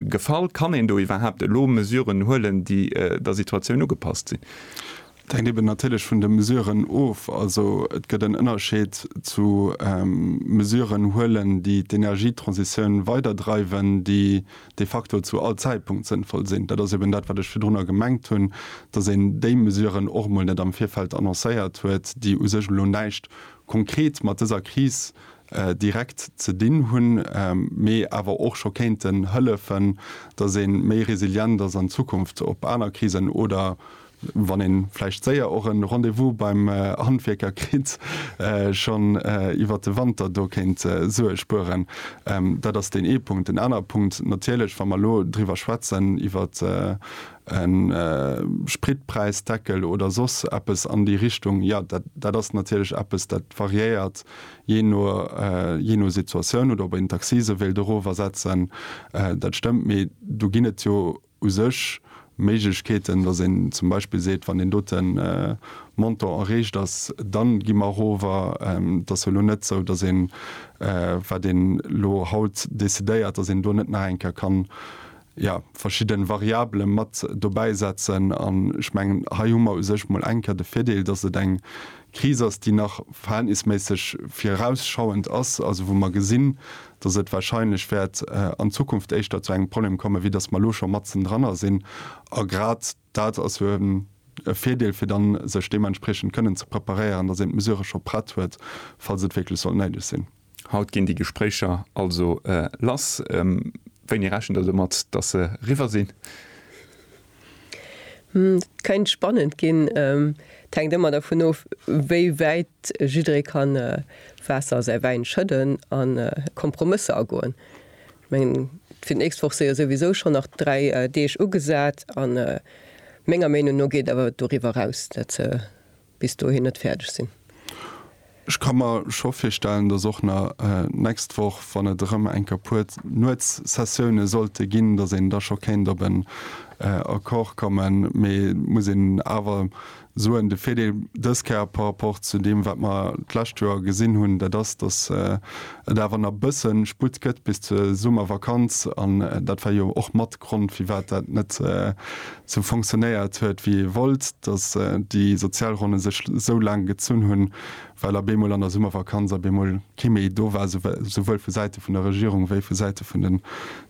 Gefall? Kann een do iwwerhaapt elo Mesuren huelen, déi der Situatioun ugepasst sinn? Et hänkt eben natierlech vun de Mesuren of. Also et gëtt en Ënnerscheed zu Mesuren huelen, déi d'Energietransitioun weiderdreiwen, déi de facto zu all Zäitpunkt sënnvoll sinn. Dat ass eben dat, wat ech virdrunner gemengt hunn, datt een déi Mesuren och emol net am Virfeld annoncéiert huet, déi u sech elo näischt konkret mat dëser Kris direkt ze dinn hunn, mee awer och scho kéinten hëllefen, dass ee méi resilient ass an Zukunft op aner Krisen oder wann ee vläicht séier och e Rendez-vous beim Handwierker kritt, schonn iwwert de Wanter do kéint Sue spueren. Dat ass deen ee Punkt. Deen anere Punkt natierlech, wa mer elo driwwer schwätzen, iwwer e Spritpräisdeckel oder soss eppes an déi Richtung, jo, dat ass natierlech eppes, dat variéiert Jee no Situatioun, oder ob een d'Accise sou wéilt erofersetzen, dat stëmmt. Mee do ginn et jo u sech Méiglechkeeten, datt een zum Beispill seet, wann deen dote Montant erreecht ass, da gi mer erover. Et ass jo elo net sou, datt een, wat een elo haut decidéiert, datt een do net nach eng Kéier kann ja, verschidden Variabelen mat dobäi setzen. An ech mengen, hei hu mer u sech mol eng Kéier de Virdeel, dass et eng Kris ass, déi nach verhältnisméisseg virausschauend ass, also wou mer gesinn, dass et wahrscheinlech wäert an Zukunft éischter zu engem Problem kommen, wéi dass mer elo scho matzen dranner sinn. A grad. Dat ass jo e Virdeel, fir dann sech deementspriechend kënnen ze preparéieren, dass een d'Mesurë scho prett huet, falls et wierklech sollt néideg sinn. Haut ginn déi Gespréicher also lass. Wéini rechent Der domat, dass se eriwwer sinn? Dat kéint spannend ginn. Et hänkt ëmmer dervun of, wéi wäit jidderee kann Waasser a säi Wäin schëdden a Kompromësser agoen. Mengen fir d'nächst Woch séie souwisou schonn nach 3 Deeg ugesat an menger Meenung no geet awer doriwwer raus, dat se bis dohin net fäerdeg sinn. Ech ka mer scho virstellen, dass och na nächst Woch, wann et erëm enker puer Nuetssessioune sollte ginn, dass een da scho kéint op en Accord kommen. Mee et muss een awer Suen. De Virdeel dës Kéier par rapport zu deem, wat mer d'lescht Joer gesinn hunn, dat ass, dass et awer nach e bësse Sputt gëtt bis zur Summervakanz. An dat war jo och mat Grond, firwat dat net sou fonctionnéiert huet wéi ee wollt, dass déi Sozialronne sech sou laang gezunn hunn, well a bemol an der Summervakanz a bemol kee méi do war, souwuel vu Säite vun der Regierung wéi vu Säite vun de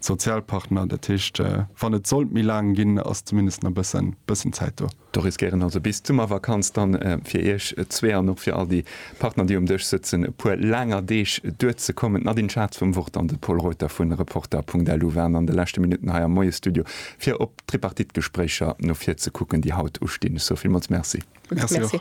Sozialpartner. Dat heescht, wann et sollt méi laang ginn, ass zumindest nach e bëssen Zäit do. Do riskéieren also bis d'Summervakanz dann fir iech zwee an och fir all déi Partner, déi um Dësch sëtzen, e puer laanger Deeg duerzekommen. D'Nadine Schatz vum Wort an de Paul Reuter vu Reporter.lu waren an de leschte Minutten hei am Moiesstudio, fir op d'Tripartite-Gespréicher no vir ze kucken, déi haut ustinn. Ech soe villmools Merci. Merci och.